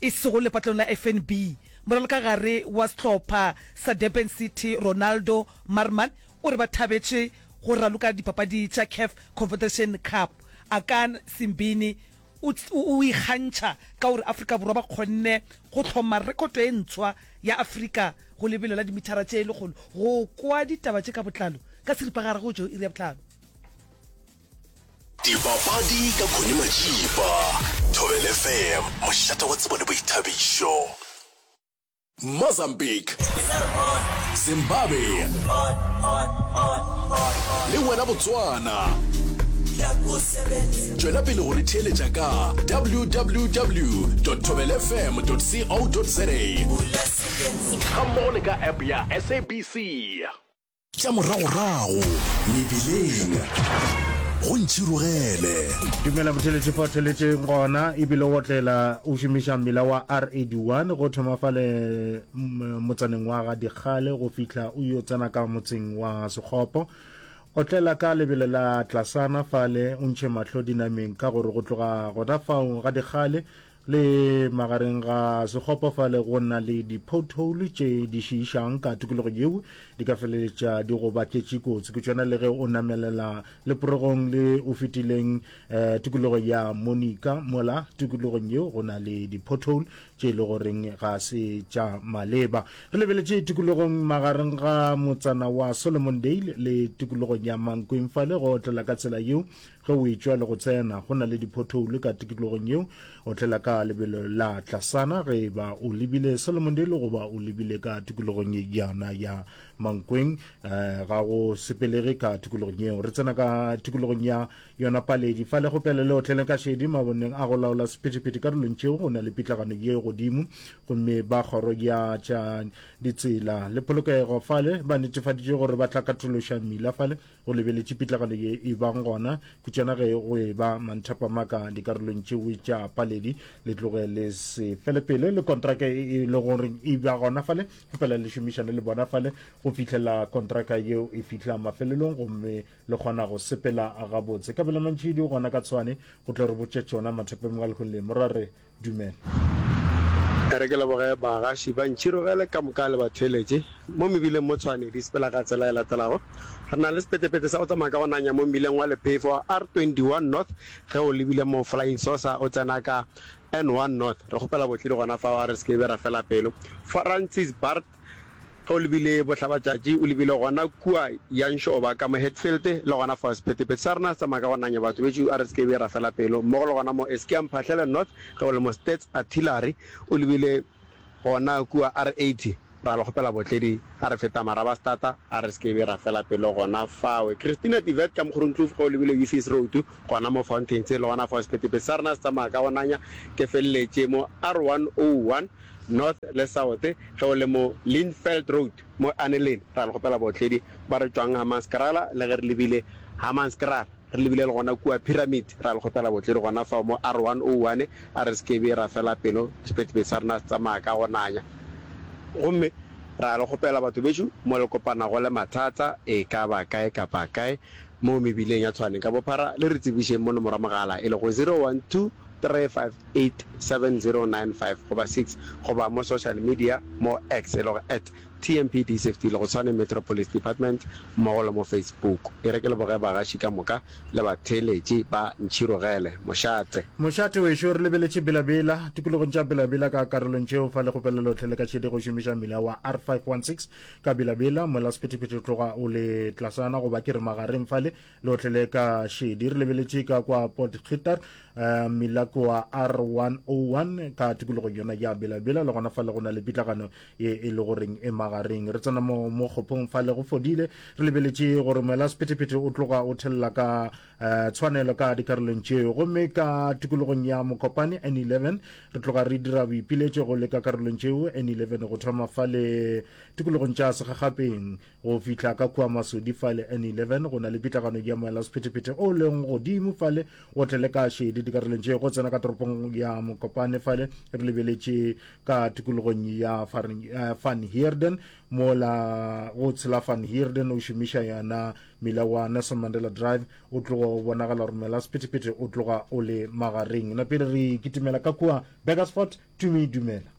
e sego lepatlong la FNB, moralokagare wa sehlopha sa Durban City Ronaldo Marman o re ba thabetše go raloka dipapadi tša Caf Confederation Cup. Akan Simbine o o ikgantšha ka gore Afrika Borwa ba kgonne go hloma rekoto e ntshwa ya Afrika go lebelo la dimithara tše lekgolo. Go kwa ditaba tše ka botlalo ka seripagare go tšo iri ya bohlano. Dipapadi ka Connie Majiba, Thobel FM, mošate wa tsebo le boithabišo. Mozambique, Zimbabwe le wena Botswana. Tšwela pele go re theeletša ka www.thobelfm.co.za gammogo le ka app ya SABC. Tša moragorago mebileng go ntšhirogele. Dumela Motheletse fa o theletse gona ebile o otlela o šomiša mmila wa R81 go thoma fale motsaneng wa ga Dikgale go fihla o yo tsena ka motseng wa Sekgopo. Otlela ka lebelo la tlasana fale o ntšhe mahlo dinameng ka gore go tloga gona fao ga Dikgale Le magareng ga sekgopo fale go na le di-pothole tše di šiišang ka tukologo yeo di ka feleletša di go baketše kotsi ke tšona le ge o namelela leporegong le o fetileng um tukologo ya monica mola tukologong yeo go na le di-pothole tše e le goreng ga se tša maleba re lebeletše tukologong magareng ga motsana wa solomon dale le tukologong ya mankweng fale go otlela ka tsela yeo Ge o etšwa le go tsena, go na le diphothoulo ka tikologong yeo. O tlela ka lebelo la tlasana ge e ba o lebile Solomondale goba o lebile ka tikologong yana ya Mankweng. Eh, ga go sepelege ka tikologong yeo. Re tsena ka tikologong ya yona Paledi. Fa legopele le otlele ka šedi maboneng a go laola sephethephethe karolong tšeo go na le pitlagano ye godimo. Gomme ba kgoro ya tša ditsela le polokego fale ba netefaditše gore ba tla katološa mmila fale go lebeletše pitlagalo ye e bang gona ke tšona ge go e ba manthapamaka dikarolong tšewe tša paledi le tloge le se felepele le kontraka e e le gore e ba gona fale go fela le šomišane le bona fale go fihlela kontraka yeo e fihla mafelelong gomme le kgona go sepela gabotse kabela mantšhidi gona ka tshwane go tlo re botša tšona mathapamaka lehung le morare Dumela. E re ke leboge bagaši ba Ntšhirogele ka moka le batheeletši mo mebileng mo Tshwane di sepela ka tsela e latelago. Re na le sepetepete sa go tsamaya ka go nanya mo mmileng wa lephefo wa R21 North ge o lebile mo Flying Saucer o tsena ka N1 North. Re kgopela botledi gona fao a re se ke be ra fela pelo. Francis Bart. Ge o lebile bohlabatšatši, o lebile gona kua ya nxoba ka mo Hatfield, le gona fa sephethephethe sa rena tsamaya ka go nanya batho bešo, a re se ke be ra fela pelo, mmogo le gona mo Eskia Mphahlele North, ge o le mo Stats Artillery, o lebile gona kua R80, ra le kgopela botledi, a re feta Marabastata, a re se ke be ra fela pelo gona fawe. Christina de Wet ka Mokgorongkloof, ge o lebile Ufies Road, gona mo Fountains, le gona fa sephethephethe sa rena se tsamaya ka go nanya, ke feleletše mo R101, North le South ge o le mo Lindveld Road mo Earnelyn. Ra le kgopela baotledi ba re tšwang Hammanskraal le ge re lebile Hammanskraal re lebile le gona kua Pyramid. Ra le kgopela baotledi gona fao mo R101 a re se ke be ra fela pelo sephetephete sa rena se tsamaya ka go nanya. Gomme ra le kgopela batho bešo mo le kopanago le mathata e ka ba kae kapa kae mo mebileng ya Tshwane ka bophara le re tsebišeng mo nomoro ya mogala e lego 012 3587095 goba 6 goba mo social media mo X e lego at TMPDCFT le go Tshwane Metro Police Department mmogo le mo Facebook. E re ke leboge bagaši ka moka le batheeletši ba Ntšhirogele Mošate. Mošate wešo re lebeletše Bela Bela, tikologong tša Bela Bela ka karolong tšeo fa le kgopela lohle le ka šedi go šomiša mmila wa R516 ka Bela Bela, moela sephethephethe tloga o le tlasana goba ke re magareng fale, lotlhe le ka šedi re lebeletše ka kwa port khitar uh, milakoa r101 ka tikologong yona ya belabela le gona fa le go na le pitlagano ye e le goreng e magareng re tsena mo mo kgopong fa le go fodile re lebeletše gore moela sephetephete o tloga o thelela ka uh, tshwanelo ka dikarolong tšeo gomme ka tikologong ya mokopane n11 re tloga re dira boipiletšo go le ka karolong tšeo n11 go thoma fa le tikologong tša segagapeng Go fihla ka kua masodi fale N11, go na le pitlagano ya moela sephetephete o leng godimo fale o tle le ka šedi dikarolong tše go tsena ka toropong ya Mokopane fale re lebeletše ka tikologong ya eh, Van Heerden mola go tshela Van Heerden o šomiša yona mila wa Nelson Mandela Drive o tloga o bonagala gore moela sephetephete o tloga o le magareng na pele re kitimela ka kua Burgersfort tumi dumela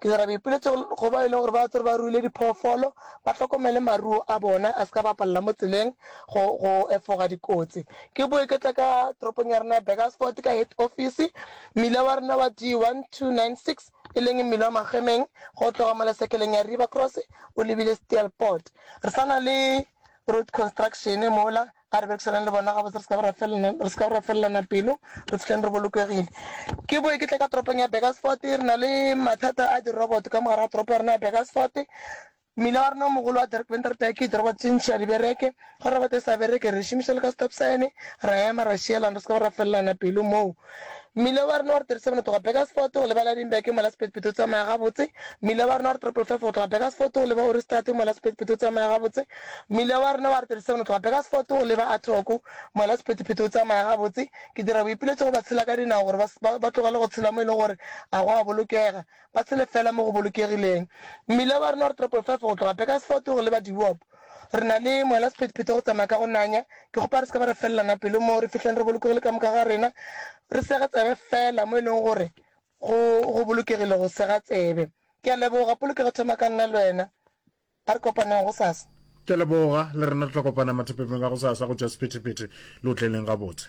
Ke dira boipiletšo go bao e lego gore ba tswere ba ruile diphoofolo, ba hlokomele maruo a bona a se ka bapalela mo tseleng go go efoga dikotsi. Ke boe ke tle ka toropong ya rena ya Burgersfort ka head office, mmila wa rena wa D1296 e leng mmila wa Magemeng ge o tloga mo lesekeleng ya River Cross o lebile Steelpoort. Re sa na le road construction mola. A re berekisaneng le bona gabotse, re se ka be ra felelana pelo, re fihleng re bolokegile. Ke boe ke tle ka toropong ya Burgersfort. Re na le mathata a diroboto ka mogare ga toropo ya rena ya Burgersfort. Mmila wa rena o mogolo wa Dirk Venter Dyke ke diroboto tše ntši ga di bereke. Ge roboto e sa bereke, re e šomiša le ka stop sign, ra ema, ra šielana, re se ka be ra felelana pelo moo. Mmila wa rena wa re 37 go tloga Burgersfort go leba Lydenburg mo la sephethephethe o tsamaya gabotse. Mmila wa rena wa re 555 go tloga Burgersfort go leba Oeristraat mo la sephethephethe o tsamaya gabotse. Mmila wa rena wa re 37 go tloga Burgersfort go leba Athook mo la sephethephethe o tsamaya gabotse. Ke dira boipiletšo go batshela ka dinao gore ba, ba tlogele go tshela mo e lego gore ga go a bolokega, ba tshele feela mo go bolokegileng. Mmila wa rena wa re 555 go tloga Burgersfort go leba Diwoop Re na le moela sephethephethe go tsamaya ka go nanya. Ke kgopa re se ke ba re felelana pelo moo, re fihleng re bolokegile ka moka ga rena. Re sege tsebe feela mo e leng gore go, go bolokegile go sega tsebe. Ke a leboga. Polokego e thoma ka nna le wena. A re kopaneng gosasa. Ke a leboga. Le rena re tla kopana mathapepeng a gosasa go tšea sephethephethe. Le otleleng gabotse.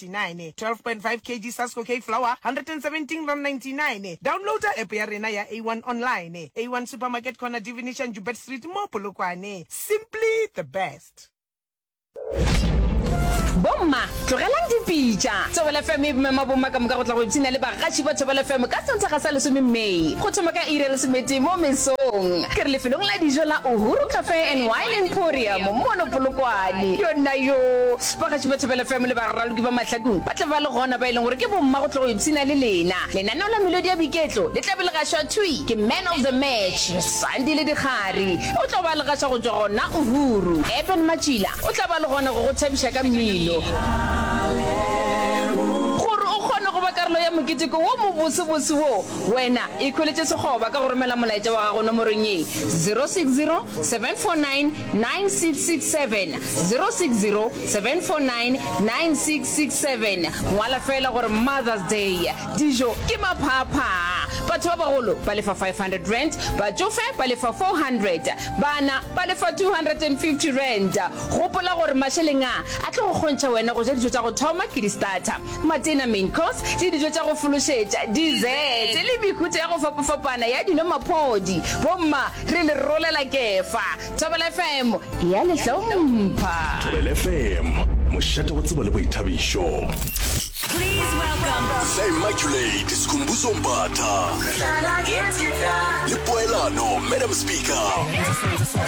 99 12.5 kg Sasco Cake Flour R117.99 Downloada app ya rena ya A1 Online A1 Supermarket Corner Divinician Joubert Street mo Polokwane Simply the best. Bomma, tlogelang dipitša. Thobela FM e mema bomma ka moka go tla go ipshina le bagatši ba Thobela FM ka Sontaga sa lesome May, go thoma ka iri ya lesometee mo mesong. Ke re lefelong la dijo la Uhuru Cafe and Wine Emporium mono Polokwane. Yona yoo! Bagatši ba Thobela FM le baraloki ba Mahlakong ba tla ba le gona ba e leng gore ke bomma go tlo go ipshina le lena. Lenaneo la Melodi ya Boiketlo le tla be le gašwa thwi ke Man of the Match, Sandile Dikgari. O tlo ba le gaša go tšwa gona Uhuru. Eben Matšila o tla ba le gona go go thabiša ka mmino. Gore o kgone go ba karolo ya moketeko wo mobosebose wo, wena ikhweletše sekgoba ka go romela molaetša wa gago nomorong ye, 060 749 9667 060 749 9667 ngwala fela gore mothers day dijo ke maphaaphaa batho ba bagolo ba lefa R500 batšofe ba lefa R400 bana ba lefa R250 gopola gore mašeleng a a tlo go kgontšha wena go ja dijo tša go thoma ke di starter matena main course le dijo tša go fološetša dessert le mehuta ya go fapafapana ya dino maphodi bomma Re le rolela Kefa. Thobela FM e a le hlompha. Thobela FM, mošate wa tsebo le boithabišo. Please welcome. Tla Immaculate Sikhumbuzo Mbatha. Le poelano, Madam Speaker.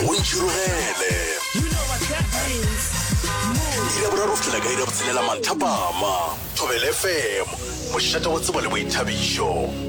O ntšhirogele. Iri ya boraro go fihlela ka iri ya botshelela manthapama. Thobela FM, mošate wa tsebo le boithabišo.